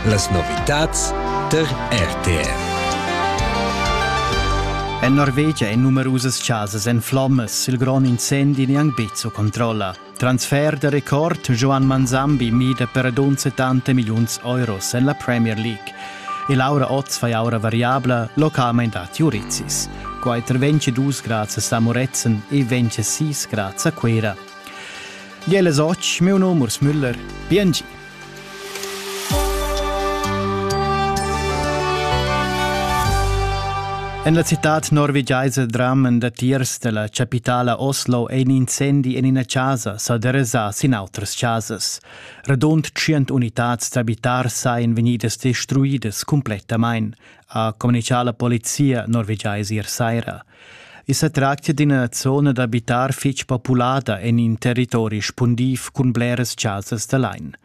Las novitads tar RTR. En Norvegia ein numerusas casas en flommas, il grond incendi gnanc bezzo controlla. Transfer de record Joan Manzambi mida per dunse tante milliuns euros en la Premier League. E Laura Oz fai aura variabla localment a Turitsis. Quai 22 grads a Moretzen e 26 grads a Quera. Gliela soc, miu num Urs Müller, biengi. En la citad norvegiaisa dramen datiers della capitala Oslo ein incendi en ina casa sa deresa sin outras casas. Radund 100 unitads d'abitars ein vegnidas destruidas completamein, ha communichà la polizia norvegiais ier saira. I sa tractia d'ina zona d'abitar fitg populada en in territori spundiv cun bleras chasas da lain.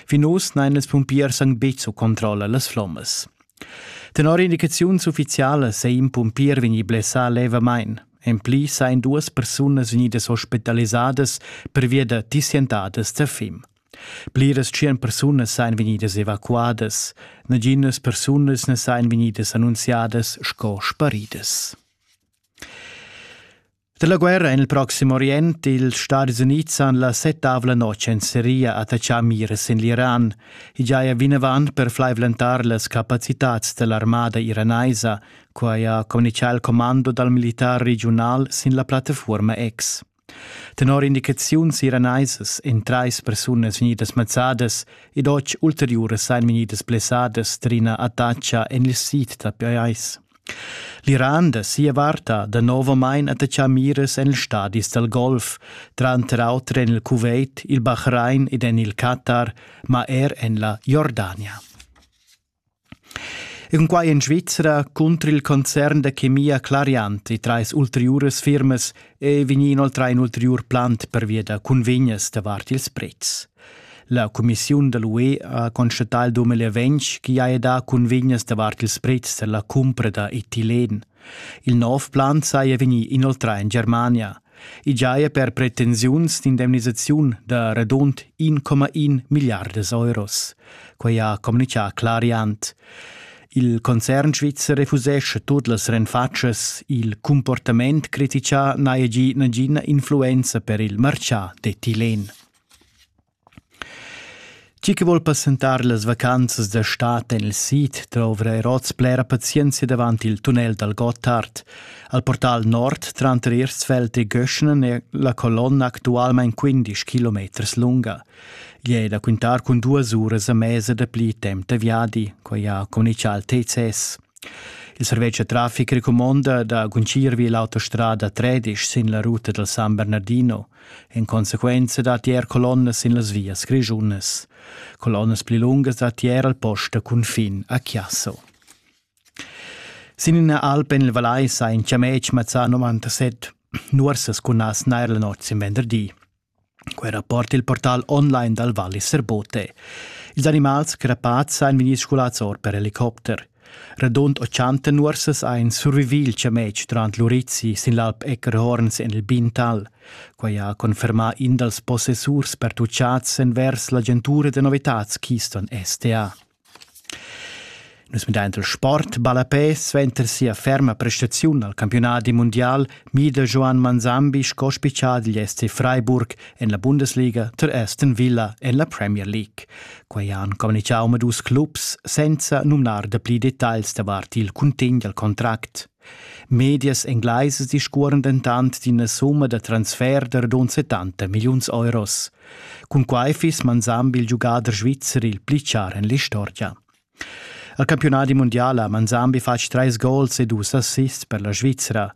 Fin uss n'han ils pumpiers anc betg su controlla las flommas. Tenor indicaziuns uffizialas è in pumpier vegnì blessà levamain. En pli sain duas persunas vegnidas ospitalisadas pervia da tissientadas da fim. Pliras tschien persunas sajan vegnidas evacuadas. Naginas persunas na sajan vegnidas annunziadas sco sparidas. Dalla guerra en il Proximo Orient ils Stati Unids han la settavla notg en Siria attaccà miras en l'Iran. I giaja vinavant per flaivlentar las capacitads dell'armada iranaisa, quai ha communichà il commando dal militar regiunal sin la plattafuorma X. Tenor indicaziuns iraneisas ein treis persunas vegnidas mazzadas ed otg ulteriuras ein vegnidas blessadas d'ina attacca en il sid da pajais. L'Iran da sia vart ha danovamein attaccà miras en ils stadis dal Golf, tranter auter en il Kuwait, il Bahrain ed en il Katar, ma er en la Jordania. Cunquai en Svizra cunter il concern da chemia Clariant e trais ulteriuras firmas è vegnì inoltrà in ulteriur plant pervia da cunvegnas davart ils pretz. La cumissiun da l'UE ha constatà il 2020 ch'i haja dà cunvegnas davart ils pretz tar la cumpra da etilен. Il nov plan saja vegnì inoltrà en Germania. I giaja per pretensiuns d'indemnisaziun da radund 1,1 milliardas euros. Quai ha communitgà Clariant. Il concern svizzer refusesce tut las renfatschas, il comportament critichà n'haja gì nagina influenza per il martgà d'etilен. Chi che vol passentar las vacanzas da stad en il sid dovra er oz blera pazienzia davant il tunnel dal Gottard. Al portal nord tranter Ersfeld e Göschnen è la colonna actualmain 15 kilometers lunga. Gli è da quintar cun duas uras a mesa dapli temp da viadi, quai ha communichà il TCS. Il servetsch da traffic recumonda da guncir vi l'autostrada 13 sin la ruta dal San Bernardino. In consequenza datti er colonnas sin las vias grischunas. Colonnas pli lungas datti er al post da cunfin a Chiasso. Sin ina alp en il Valais ha in chametg mazzà 97 nuorsas cun nas nair la notg in venderdi. Quel rapport il portal online dal Vallis Serbote. Ils animals crepats han vegnì scolats or per helicopter. Radund 80 nuorsas ein survivi il chametg durant l'urizi sin l'alp Eckerhorns en il Bintal. Quei ha confermà in dals possessurs pertuchats envers l'agentura da novitads Keystone STA. Nus midaint il sport, ballapè suenter sia ferma prestaziun al campionadi mundial mida Joan Manzambi sco spitschà digl SC Freiburg en la Bundesliga tar Aston Villa en la Premier League. Quei han communicau med dus clubs senza numnar da pli detagls davart il cuntegn dal contract. Medias englaisas discuoren dentant d'ina summa da transfer da radun 70 milliuns euros. Cun quai fiss Manzambi il giugader svizzer il pli char en l'istorgia. Al campionat mundial ha Manzambi fatg treis gols e dus assists per la Svizzera.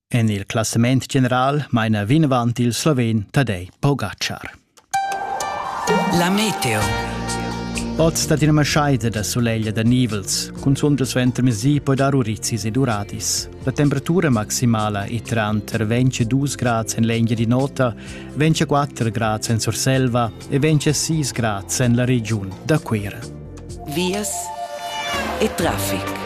En il classament general maina vinavant il sloven Tadej Pogačar. La meteo. Oz dat ina maschaida da sulegl da nivels, cun sonda suenter mesi poi dar urizis ed uradis. La temperatura maximala è tranter 22 grads en l'Engia di Nota, 24 grads en Surselva e 26 grads en la regiun da Cuira. vias e traffic.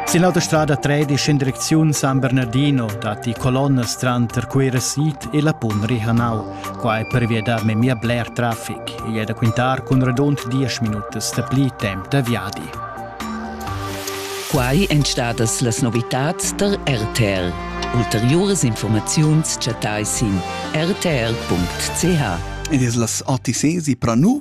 Sin l'autostrada 13 in direcziun San Bernardino datti colonnas tranter Cuira Sid e la Pun Rihanau. Quai pervia da memia bler traffic. Igl è da quintar cun radund 10 minutas dapli temp da viadi. Quai èn stadas las novitads tar RTL. Ulteriuras informaziuns chattai sin rtl.ch. Ed es las ATCs i pranu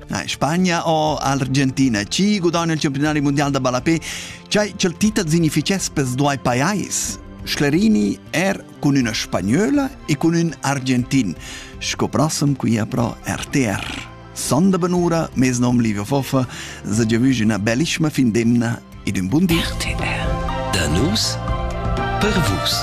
Na, Spagna o Argentina, chi gudagna il campionari mondial da ballapè, chai ch'el tita significhess pels duai pajais? Sclerini er cun üna spagnola e cun ün argentin, sco prossem qui a pro RTR. Sonda benura, mes nom Livio Foffa, se giavüsch üna bellissima fin d'emna ed un bun di. RTR. Da nus per vus.